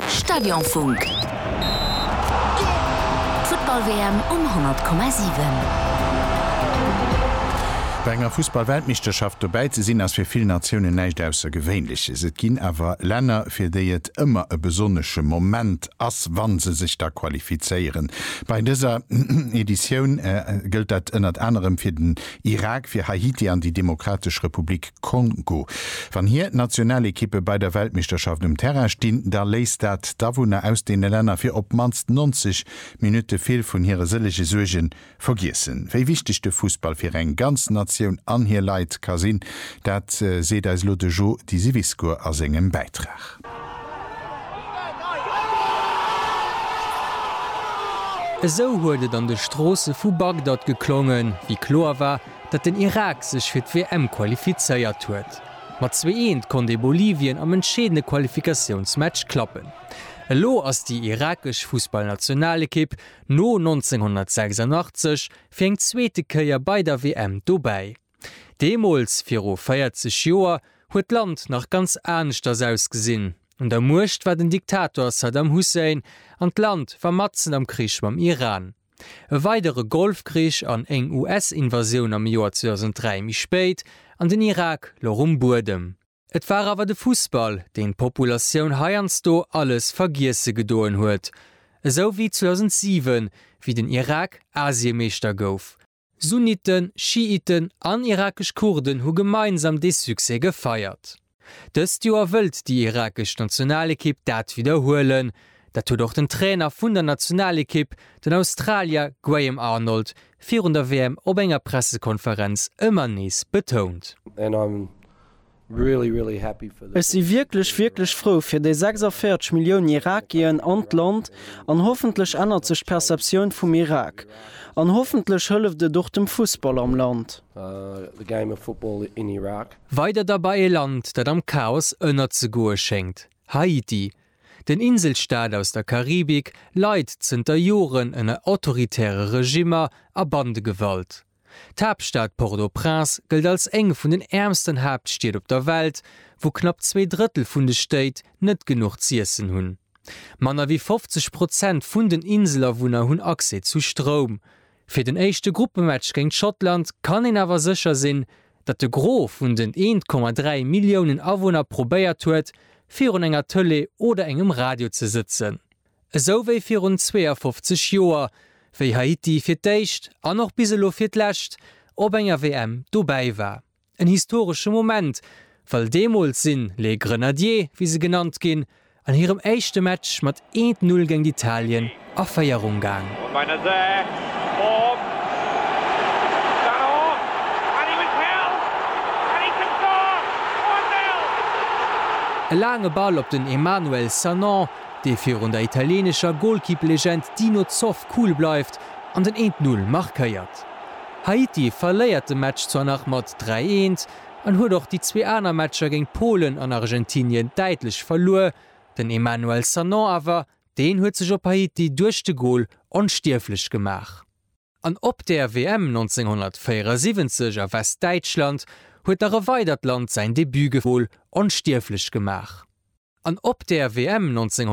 Stadionfunk, d'Futtball-WM um 100,7. Bei enger Fussball-Weltmeeschterschaft dobäi ze sinn, ass fir vill Natiounen näischt Aussergewéinleches. Et ginn awer Länner, fir déi et ëmmer e besonnesche Moment ass, wa se sech da qualifizéieren. Bei dëser Editioun gëllt dat ënnert anerem fir den Irak fir Haiti an déi Demokratesch Republik Kongo. Wann hir Nationalekippe bei der Weltmeeschterschaft um Terrain stinn, da léisst dat d'Awunner aus deene Länner fir op d'mannst 90 Minutte vill vun hire sëllege Suerge vergiessen. Wéi wichteg de Fussball fir eng ganz Natioun an hir Leit ka sinn, dat seet eis elo de Jo Disiviscourt a sengem Bäitrag. Esou huet et an de Stroosse vu Bagdad geklongen, wéi kloer war, datt den Irak sech fir d'WM qualifizéiert huet. Mat zwee Eent konnt ee Bolivien am entscheedende Qualifikatiounsmatch klappen. Elo ass déi irakesch Fussballnationalekipp no 1986 fir eng zweete Kéier bei der WM dobäi. Deemools, viru 40 Joer, huet d'Land nach ganz aneschters ausgesinn. Un der Muecht war den Diktator Saddam Hussein an d'Land war matzen am Krich mam Iran. E weidere Golfkrich an éng US-Invasioun am Joer 2003 méi spéit an den Irak louch um Buedem. Et war awer de Fussball, deen d'Populatioun heiansdo alles vergiesse gedoen huet. Esou wéi 2007, wéi den Irak Asiemeeschter gouf. Sunniten, Schiiten an irakesch Kurden hu gemeinsam dee Succès gefeiert. Dëst Joer wëllt déi irakesch Nationalekipp dat widderhuelen. Dat huet och den Trainer vun der Nationalekipp, den Australier Graham Arnold, virun der WM op enger Pressekonferenz ëmmer nees betount. Ech si wierklech, wierklech frou fir déi 46 Milliounen Irakien an d'Land, an hoffentlech ännert sech d'Perceptioun vum Irak, an hoffentlech hëlleft et och dem Fussball am Land. Weider da bei e Land, dat am Chaos ënnerzegoe schéngt, Haiti. Den Inselstaat aus der Karibik leit zënter Joren ënner autoritäre Regimmer a Bandegewalt. D'Haaptstad Port-au-Prince gëllt als eng vun den äermsten Haaptstied op der Welt, wou knapp zwee Drëttel vun de Stéit net genuch z'iessen hunn. Manner wéi 50 Prozent vun den Inselawunner hunn Accès zu Stroum. Fir den éischte Gruppematch géint Schottland kann een awer sécher sinn, datt de Gros vun den 1,3 Milliounen Awunner probéiert huet, virun enger Tëlee oder engem Radio ze sëtzen. Esou wéi virun 52 Joer, wéi Haiti fir d'éischt, an och bis elo fir d'lescht, op enger WM dobäi war. En historesche Moment, well deemools sinn Les Grenadiers, wéi se genannt ginn, an hirem éischte Match mat eent Null géint Italien a Féierung gaang. E laange Ball op den Emmanuel Sanon. dee virun der italienescher Golkipplegend Dino Zoff cool bleift an den eent Null markéiert. Haiti verléiert de Match zwar nach mat dräi eent an huet och déi zwee aner Matcher géint Polen an Argentinien däitlech verluer, den Emmanuel Sanon awer, deen huet sech op Haiti duerch de Gol onstierflech gemaach. An op der WM 1974 a Westdäitschland huet nach e weidert Land säin Debut gef. Onstierflech gemaach. An op der WM 1974.